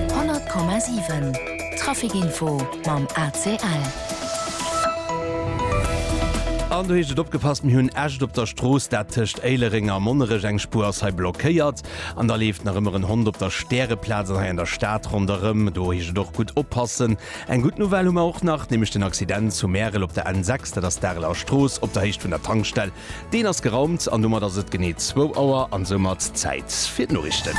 100,7 Traficinfo mam ACL. An do heescht et opgepasst, mir hunn Äscht op der Strooss, dat tëscht Éilereng a Monnerech. Eng Spuer ass hei blockéiert an da leeft nach ëmmer en Hond op der Stäreplaz an hei an der Stad ronderëm. Do heescht et och gutt oppassen. Eng gutt Nouvelle hu mer och nach, nämlech den Accident zu Märel op der N6, dat ass d'Areler Strooss op der Héicht vun der Tankstell Deen ass geraumt an domat ass et genee zwou Auer an soumat Zäit fir d'Noriichten.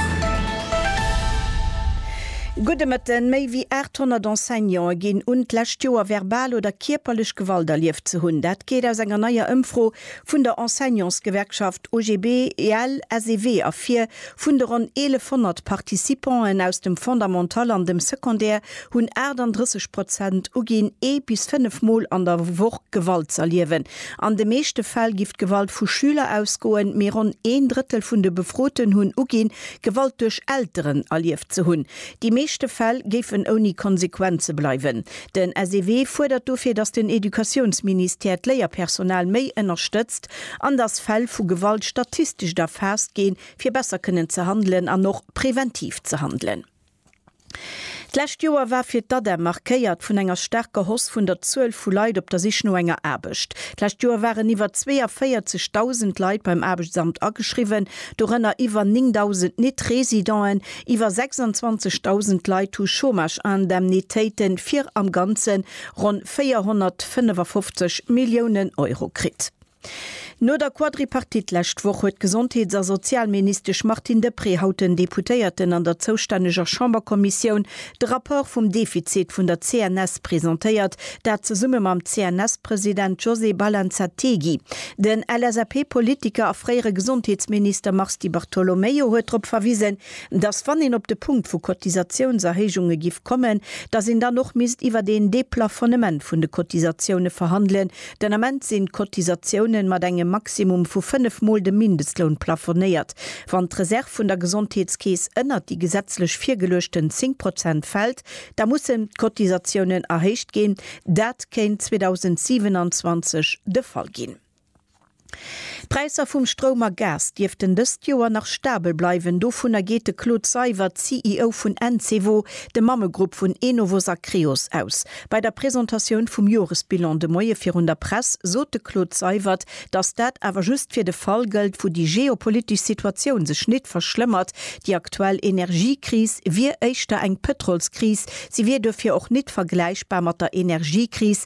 Gudde Mëtten. Méi wéi 800 Enseignante ginn un, d'lescht Joer verbal oder kierperlech Gewalt erlieft ze hunn. Dat geet aus enger neier Ëmfro vun der Enseignantsgewerkschaft OGBL-SEW ervir. Vun de ronn 1.100 Participanten aus dem Fondamental an dem Secondaire hunn 38 Prozent uginn, ee bis fënnef Mol an der Woch Gewalt z'erliewen. An de meeschte Fäll giff d'Gewalt vu Schüler ausgoen, mee ronn een Drëttel vun de Befroten hunn uginn, Gewalt duerch Elteren erlieft ze hunn. Déi meeschte Fäll géifen ouni Konsequenze bleiwen. Den SEW fuerdert dofir, datt den Educatiounsministère d'Léierpersonal méi ënnerstëtzt an datt Fäll vu Gewalt statistescht erfaasst ginn, fir besser kënnen ze handelen an och preventiv ze handelen. D'lescht Joer war fir d'ADEM markéiert vun enger staarker Hausse vun der Zuel vu Leit op der Sich no enger Aarbecht. D'lescht Joer waren iwwer 42.000 Leit beim Aarbechtsamt ageschriwwen, dorënner iwwer 9.000 Net-Residenten. Iwwer 26.000 Leit hu Chômage-Indemnitéite fir am Ganze ronn 455 Milliounen Euro kritt. No der Quadripartite lescht Woch huet d'Gesondheets a Sozialministesch Martine Deprez haut den Deputéierten an der zoustänneger Chamberkommissioun de Rapport vum Defizit vun der CNS presentéiert, dat zesumme mam CNS-President José Balanzategui. Den LSAP-Politiker a fréiere Gesondheetsminister Mars Di Bartolomeo huet drop verwisen, datt wann een op de Punkt vu Cotisatiounserhéijunge giff kommen, datt een dann och misst iwwer een Deplafonnement vun de Cotisatioune verhandelen, Den Ament sinn d'Cotisatiounen mat engem Maximum vu fënnef Mol dem Mindestloun plafonéiert. Wann d'Reserv vun der Gesondheetskeess ënnert déi gesetzlech virgeluechten 10 Prozent fält, da mussen d'Cotisatiounen erhéicht ginn. Dat kéint 2027 de Fall ginn. D'Präisser vum Stroum a Gas dierften dëst Joer nach stabel bleiwen, dovunner geet de Claude Seywert, CEO vun Encevo, dem Mammegrupp vun Enovos a Creos, aus. Bei der Presentatioun vum Joresbilan de Moie virun der Press sot de Claude Seywert, datt dat awer just fir de Fall gëllt, wou déi geopolitesch Situatioun sech nit verschlëmmert. Déi aktuell Energiekris wier éischter eng Pëtrolskris, se wier duerfir och nit vergläichbar mat der Energiekris,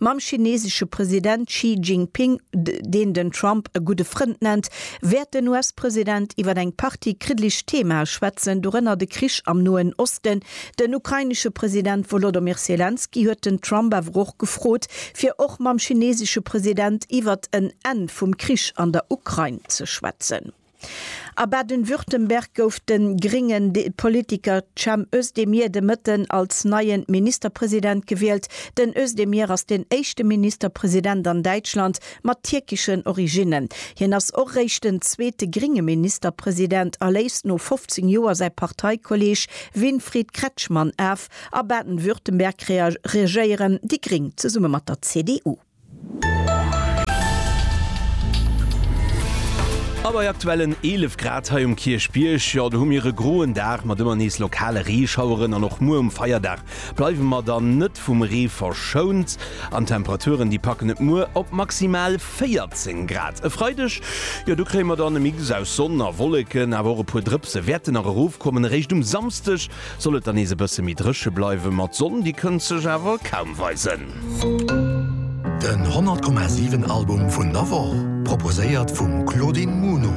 Mam chinesesche President Xi Jinping, deen den Trump e gudde Frënd nennt, wäert den US-President iwwer eng Partie kriddeleg Themae schwätzen, dorënner de Krich am Noen Osten. Den ukrainesche President Wolodymyr Selenskyj huet den Trump awer och gefrot, fir och mam chinesesche President iwwert en Enn vum Krich an der Ukrain ze schwätzen. A Baden-Württemberg gouf de gréngen Politiker Cem Özdemir de Mëtten als neien Ministerpresident gewielt. Den Özdemir ass den éischte Ministerpresident an Däitschland mat tierkeschen Originnen. Hien ass och réischt den zweete grénge Ministerpresident a léist no 15 Joer säi Parteikolleeg Winfried Kretschmann af. A Baden-Württemberg regéieren déi Gréng zesumme mat der CDU. A bei aktuellen 11 Grad hei um Kierchbierg, jo, do hu mir e groen Dag mat ëmmer nees lokale Reeschaueren. An och muer um Feierdag bleiwe mer dann net vum Ree verschount. An d'Temperaturen, déi packen et muer op maximal 14 Grad. E Freideg, jo, do kréie mer dann e Mix aus Sonn a Wolleken, awer och e puer Drëpse wäerten nach erofkommen. Eréischt um Samsdeg Soll et dann nees e bësse méi dréche bleiwe mat Sonn, déi kënnt sech awer kaum weisen. Den 100 Komma 7 Album vun der Woch, proposéiert vum Claudine Muno.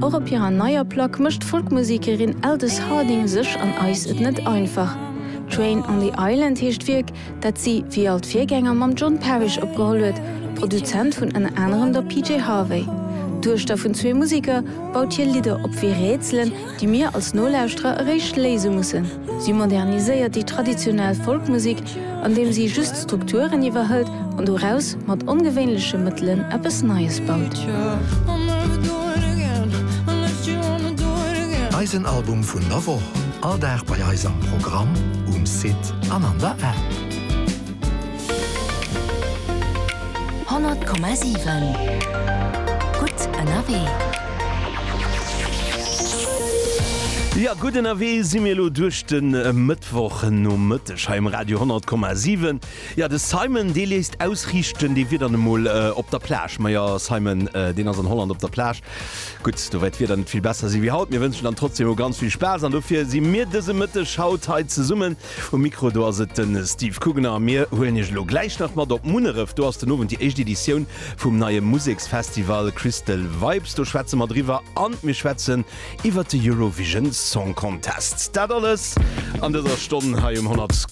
Och op hirer neier Plack mécht d'Folkmusekerin Aldous Harding sech an eis et net einfach. Train on the Island heescht d'Wierk, dat si wéi all d'Virgänger mam John Parish opgeholl huet, Produzent vun ënner anerem der PJ Harvey. D'Duechter vun zwee Museker baut hir Lidder op wéi Rätselen, déi mir als Nolauschterer eréischt léise mussen. Si moderniséiert déi traditionell Folkmusek, andeem si just d'Strukturen iwwerhëlt an doraus mat ongewéinleche Mëttelen eppes Neies baut. Eisen Album vun der Woch, all Dag bei eis am Programm, um Site. an an der App. 100,7 Gutt ënnerwee. Jo, gutt ënnerwee si mir elo duerch de Mëttwochnomëtteg hei um Radio 100,7. Jo, de Simon, dee léisst ausriichten, dee wier dann emol op der Plage. Majo, Simon, deen ass an Holland op der Plage. Gutt, do wäert d'Wieder net vill besser si wéi haut. Mir wënschen dann trotzdeem emol ganz vill Spaass an dofir si mir dëse Mëtteg haut hei zesummen. Um Mikro do ass et de Steve Kugener a mir huelen Iech elo gläich nach mat op Munneref. Do ass den Owend déi éischt Editioun vum neie Museksfestival Crystal Vibes. Do schwätze mer driwwer an mir schwätzen iwwert de Eurovision Song Contest. Dat alles an dëser Stonn hei um 100.